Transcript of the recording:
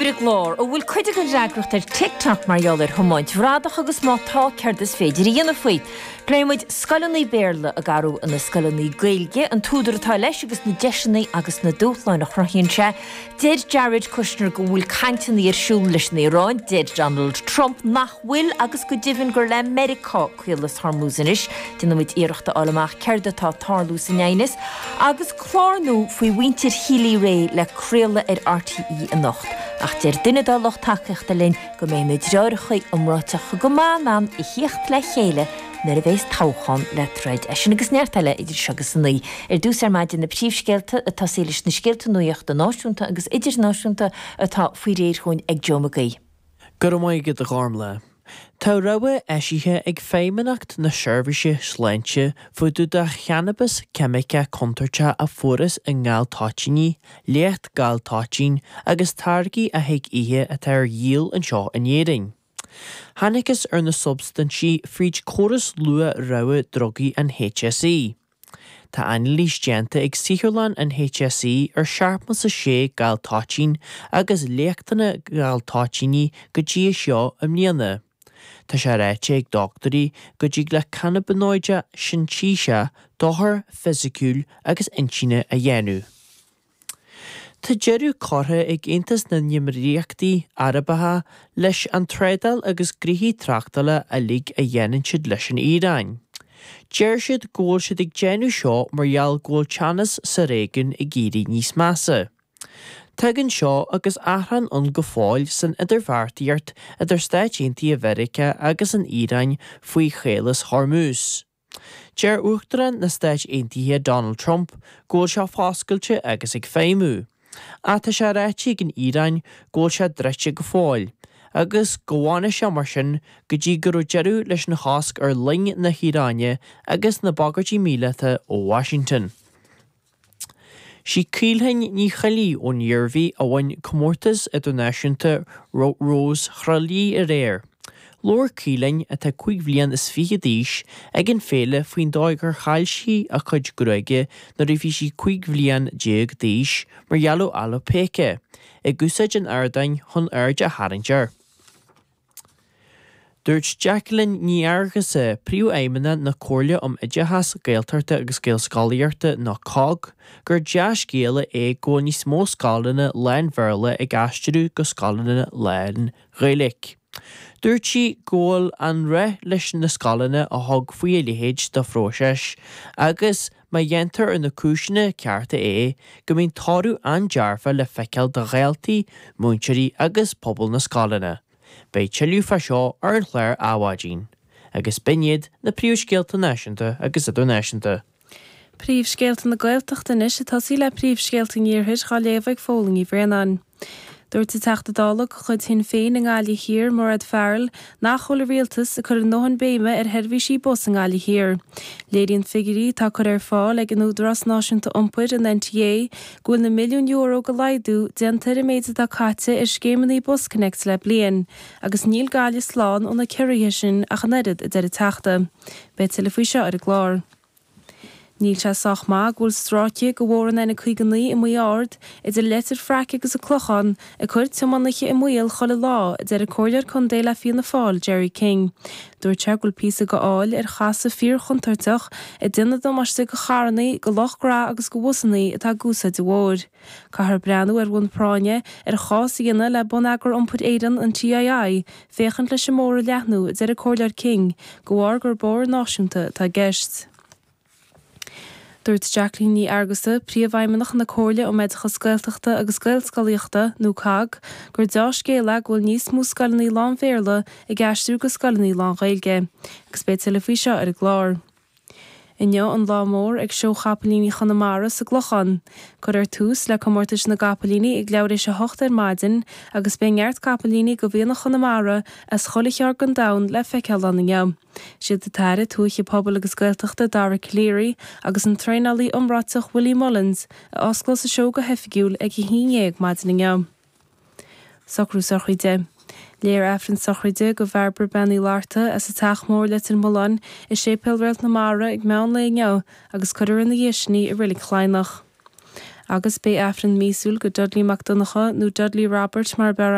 Clár, an bhfuil cuid den fhreagracht ar TikTok mar gheall ar thiomáint bhradach agus má tá, céard is féidir a dhéanamh faoi. Pléann muid scoileanna Béarla ag athrú ina scoileanna Gaeilge, an t-údar atá leis agus na deiseanna agus na dúshláin a chruthaíonn sé. Deir Jared Kushner go bhfuil cainteanna ar siúl leis an Iaráin, deir Donald Trump nach bhfuil agus go deimhin gur le Meiriceá. Caolas Hormuz anois, déanaimid iarracht a fháil amach céard atá ag tarlú san aighneas, agus clár nua faoi mhuintir Healy-Rae le craoladh ar RTÉ anocht, ach deir duine dá lucht tacaíochta linn go mbeidh na deartháireacha iomráiteacha go maith in ann a theacht le chéile nuair a bheas toghchán le troid. É sin agus neart eile idir seo agus a naoi ar dtús ar maidin, na príomhscéalta a túsaíos leis na scéalta nuachta náisiúnta agus idirnáisiúnta atá faoi réir chugainn ag Joe Mag Aoidh. Go raibh maith agat, a Ghormlaith. Tá rabhadh eisithe ag Feidhmeannacht na Seirbhíse Sláinte fá dtaobh de channabas ceimiceach contúirteach a fuarthas i ngaltoitíní, léacht galtoitín agus táirgí a thig ithe atá ar díol anseo in Éirinn. Tháinigtheas ar na substaintí fríd córas luath-rabhadh drugaí an HSE. Tá ainilís déanta ag saotharlann an HSE ar seachtó sé galtoitín agus leachtanna galtoitíní go dtí seo i mbliana. Tá sé ráite ag dochtúirí go dtig le cannaibionóidí sintéiseacha dochar fisiciúil agus intinne a dhéanamh. Tá deireadh curtha ag Aontas na nÉimíríochtaí Arabacha leis an trádáil agus gnoithí tráchtála uilig a dhéanann siad leis an Iaráin. Deir siad go bhfuil siad ag déanamh seo mar gheall go bhfuil teannas sa réigiún ag éirí níos measa. Tagann seo agus achrann ann go fóill san idirbheartaíocht idir Stáit Aontaithe Mheiriceá agus an Iaráin faoi Chaolas Hormuz. Deir Uachtarán na Stát Aontaithe Donald Trump go bhfuil sé foscailte agus ag feidhmiú, ach tá sé ráite ag an Iaráin go bhfuil sé druidte go fóill, agus go bhfanfaidh sé mar sin go dtí go mbeidh deireadh leis an chosc ar loing na hIaráine agus na bagairtí míleata ó Washington. Sí Caoilfhionn Ní Cheallaigh ón Iarmhí a bhain Comórtas Idirnáisiúnta Rós Thrá Lí aréir. Labhair Caoilfhionn, atá cúig bhliain is fiche d'aois, ag an fhéile faoin dóigh gur chaill sí a cuid gruaige nuair a bhí sí cúig bhliain déag d'aois mar gheall ar alopecia, ag úsáid an ardáin chun aird a tharraingt air. Dúirt Jacqueline Ní Fhearghusa, Príomhfheidhmeannach na Comhairle um Oideachas Gaeltachta agus Gaelscolaíochta, nó COGG, gur dea-scéala é go bhfuil níos mó scoileanna lán-Bhéarla ag aistriú go scoileanna lán-Ghaeilge. Dúirt sí go bhfuil an-réidh leis na scoileanna a thug faoi a leithéid de phróiseas agus, Má dhéantar ar na cúiseanna cearta é, go mbíonn toradh an-dearfa le feiceáil do dhaltaí, múinteoirí agus pobal na scoileanna. Beidh tuilleadh fá seo ar an chlár Adhmhaidin. Agus b'in iad na príomhscéalta náisiúnta agus idirnáisiúnta. Príomhscéalta na Gaeltachta anois. Ag tosaí le príomhscéalta an Iarthair, á léamh ag Fódhla Ní Bhraonáin. Dúirt an Teachta Dála de chuid Shinn Féin i nGaillimh Thiar, Mairéad Farrell, nach bhfuil an rialtas ag cur a ndóthain béime ar sheirbhísí bus i nGaillimh Thiar. Léiríonn figiuirí atá curtha ar fáil ag an Údarás Náisiúnta Iompair, an NTA, go bhfuil na milliúin euro de laghdú déanta ar an méid atá caite ar scéimeanna BusConnects le bliain, agus níl Gaillimh slán ó na ciorruithe sin ach an oiread, a deir an Teachta. Beidh tuilleadh faoi seo ar an gclár. Níl sé sách maith go bhfuil stráice de bhóthar an N59 i Maigh Ard, idir Leitir Fraic agus an Clochán, ag cur tiománaithe i mbaol chuile lá, a deir an Comhairleoir Contae le Fianna Fáil, Gerry King. Dúirt sé go bhfuil píosa de fhál ar chasadh fíorchontúirteach ag déanamh damáiste do charrannaí, do lucht gnaithe agus do bhusannaí atá ag úsáid an bhóthair. Caithfear breathnú ar bhonn práinne ar chás a dhéanamh le Bonneagar Iompair Éireann, an TII, féachaint leis an mbóthar a leathnú, a deir an Comhairleoir King, de bharr gur bóthar náisiúnta atá i gceist. Dúirt Jacqueline Ní Fhearghusa, Príomhfheidhmeannach na Comhairle um Oideachas Gaeltachta agus Gaelscolaíochta, nó COGG, gur deá-scéal é go bhfuil níos mó scoileanna lán-Bhéarla ag aistriú go scoileanna lán-Ghaeilge, agus beidh tuilleadh faoi seo ar an gclár. Inniu an lá mór ag Seó Chapaillíní Chonamara sa gClochán. Cuirfear tús le comórtais na gcapaillíní ag leathuair tar éis a hocht ar maidin agus beidh neart capaillíní de mhianach Chonamara as chuile cheard den domhan le feiceáil ann inniu. Siad an tAire Tuaithe Pobail agus Gaeltachta Dara Calleary agus an traenálaí iomráiteach Willie Mullins a osclós an seó go hoifigiúil ag a haon dhéag maidin inniu. Socrú sochraide. Léifear Aifreann sochraide do Bhairbre Bean Uí Fhlatharta as an Teach Mór Leitir Mealláin i Séipéal Réalt na Mara ag meán lae inniu agus cuirfear ina dhiaidh sin í i Reilig Chladhnach. Agus beidh Aifreann míosúil do Dudley Mac Donnacha, nó Dudley Robert mar ab fhearr